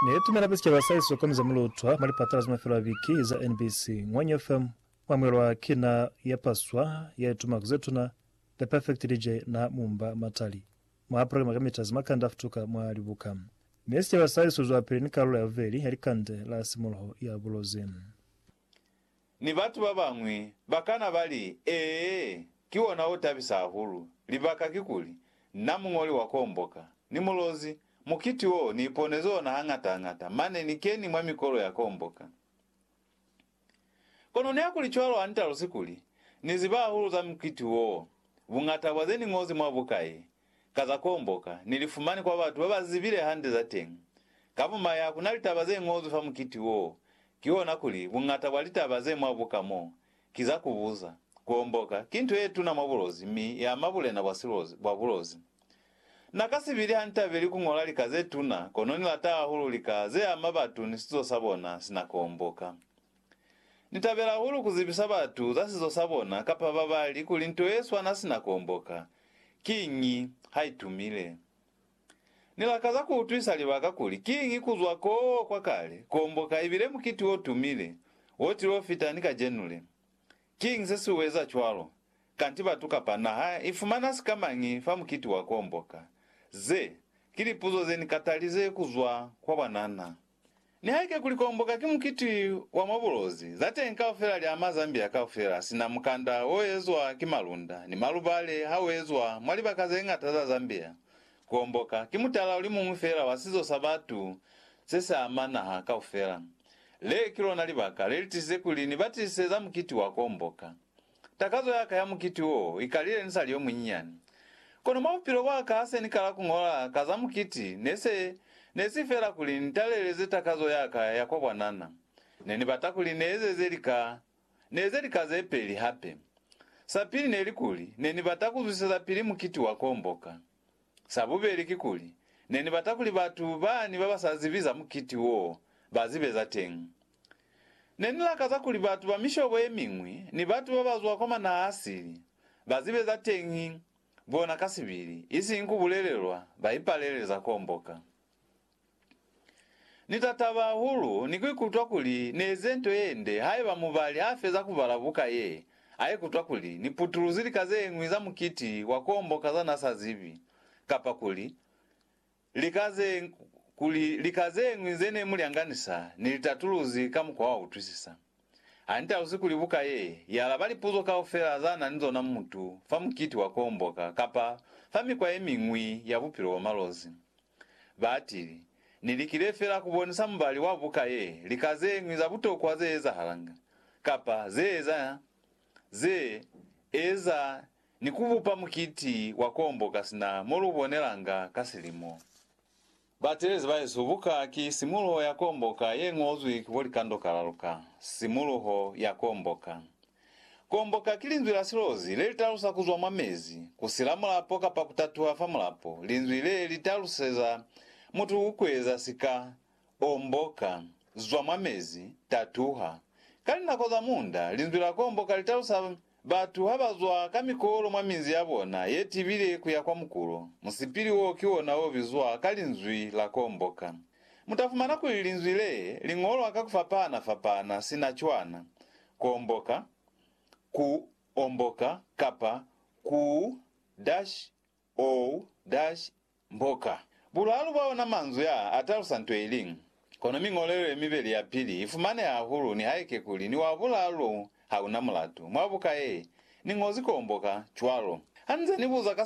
Ne i tumela hape sicaba sa iso kono za mu lutwa mwa lipatala za mafelo a biki za NBC, Ngwanyo FM, mwa mwelwa ki na ya paswa ya ituma ku ze tuna, The Perfect DJ na Mumba Matali, mwa programa ka mita za makande a futuka mwa libuka. Mi sicaba sa iso zwapili ni kalulo ya bubeli ya likande la simuluho ya bulozi. Ni batu ba bañwi ba kana ba li, Ee, ki ona o tabisa hahulu. Libaka kikuli, na muñoli wa Komboka! Ni mulozi! Mukiti wo ni iponezi ona hañata-hañata, mane ni keni mwa mikolo ya Komboka. Kono nihakuli cwalo ha ni talusi kuli, Ni ziba hahulu za mukiti wo, buñata bwa ze ni ñozi mwa buka ye, ka za kuomboka, ni li fumani kwa batu ba ba zibile hande za teñi. Ka bumaya, ku na litaba ze ñozwi fa mukiti woo, kihona kuli, buñata bwa litaba ze mwa buka mo, ki za ku buza. Ku omboka, ki nto ye tuna mwa bulozi mi ya ama bulena bwa silozi, bwa bulozi. Na ka si bili hanitabeli ku ñola lika ze tuna, kono ni lata hahulu lika ze ama batu ni sizo sa bona sina kuomboka. Ni tabela hahulu ku zibisa batu za sizo sa bona kapa babali kuli nto ye swana sina ku omboka. Kiñi ha i tumile? Ni lakaza ku utwisa libaka kuli kiñi ku zwa koo kwa kale ku omboka ibile mukiti wo tumile wo tilo fita ni kacenu le. Kiñi se si u eza cwalo? Kanti batu kapa naha i fumana sikamañi fa mukiti wa ku omboka? Ze ki lipuzo ze ni katalize ku zwa kwa bwanana. Nihaike kuli Komboka ki mukiti wa mwa bulozi, za teñi kaufela li ama Zambia kaufela, sina mukanda o ezwa ki malunda ni malubale ha u ezwa mwa libaka ze ñata za Zambia. Komboka ki mutala o li muñwi feela wa sizo sa batu se si ama naha kaufela. Le ki lona libaka le li tisize kuli ni batise za mukiti wa Komboka. Takazo ya ka ya mukiti wo i kalile ni sa li yo munyinyani. Kono mwa bupilo bwa ka ha se ni kala ku ñola ka za mukiti ne se ne si feela kuli ni taleleze takazo ya ka ya kwa bwanana. Ne ni bata kuli ni ezeze lika, ni eze lika ze peli hape. Sa pili ne li kuli ne ni bata ku zwisezapili mukiti wa komboka. Sa bubeli kikuli, ne ni bata kuli batu bani ba ba sa zibi za mukiti wo ba zibe za teñi. Ne ni lakaza kuli batu ba mishobo ye miñwi ni batu ba ba zwa kwa manaha-a-sili ba zibe za teñi bona ka sibili, isiñi ku bulelelwa ba ipalelele za komboka. Ni ta taba hahulu ni ku ikutwa kuli ni eze nto ye nde haiba mubali ha feza ku bala buka ye, a ikutwa kuli ni putuluzi lika ze ñwi za mukiti wa kombo ka za n'a sa zibi, kapa kuli lika ze, kuli lika ze ñwi ze ne mu lyanganisa ni litatuluzi ka mukwa wa utwisisa. Ha ni talusi kuli buka ye i alaba lipuzo kaufela za na ni zona mutu fa mukiti wa ku homboka kapa fa mikwa ye miñwi ya bupilo bwa malozi. Ba atile, Ni likile feela ku bonisa mubali wa buka ye lika ze ñwi za butokwa ze ezahalanga, kapa ze eza, ze eza ni ku bupa mukiti wa ku homboka sina mo lu bonelanga ka silimo. Batelezi bahesu, buka ki simuluho ya komboka ye ñozwi ki bo likando kalalu ka. Simuluho ya komboka. Komboka ki linzwi la silozi le li talusa ku zwa mwa mezi, ku sila mulapo kapa ku tatuha fa mulapo, linzwi le li taluseza mutu ku kueza sika, omboka, zwa mwa mezi, tatuha. Ka linako za munda, linzwi la komboka li talusa. Batu ha ba zwa ka mikolo mwa minzi ya bona ye tibile ku ya kwa mukulo, musipili woo ki wona o bizwa ka linzwi la komboka. Mu ta fumana kuli linzwi lee li ñolwa ka ku fapahana-fapahana sina cwana, komboka, ku omboka, kapa ku dash Ou, Dash, mboka. Bulaalu bwa ona manzwi aa atalusa nto iliñwi. Kono miñolelo yemibeli yapili ifumaneha hahulu nihaike kuli ni wa bulaalu lou hauna mulatu. Mwa buka ye, ni ñozi koo mboka, cwalo. Hanize ni buza ka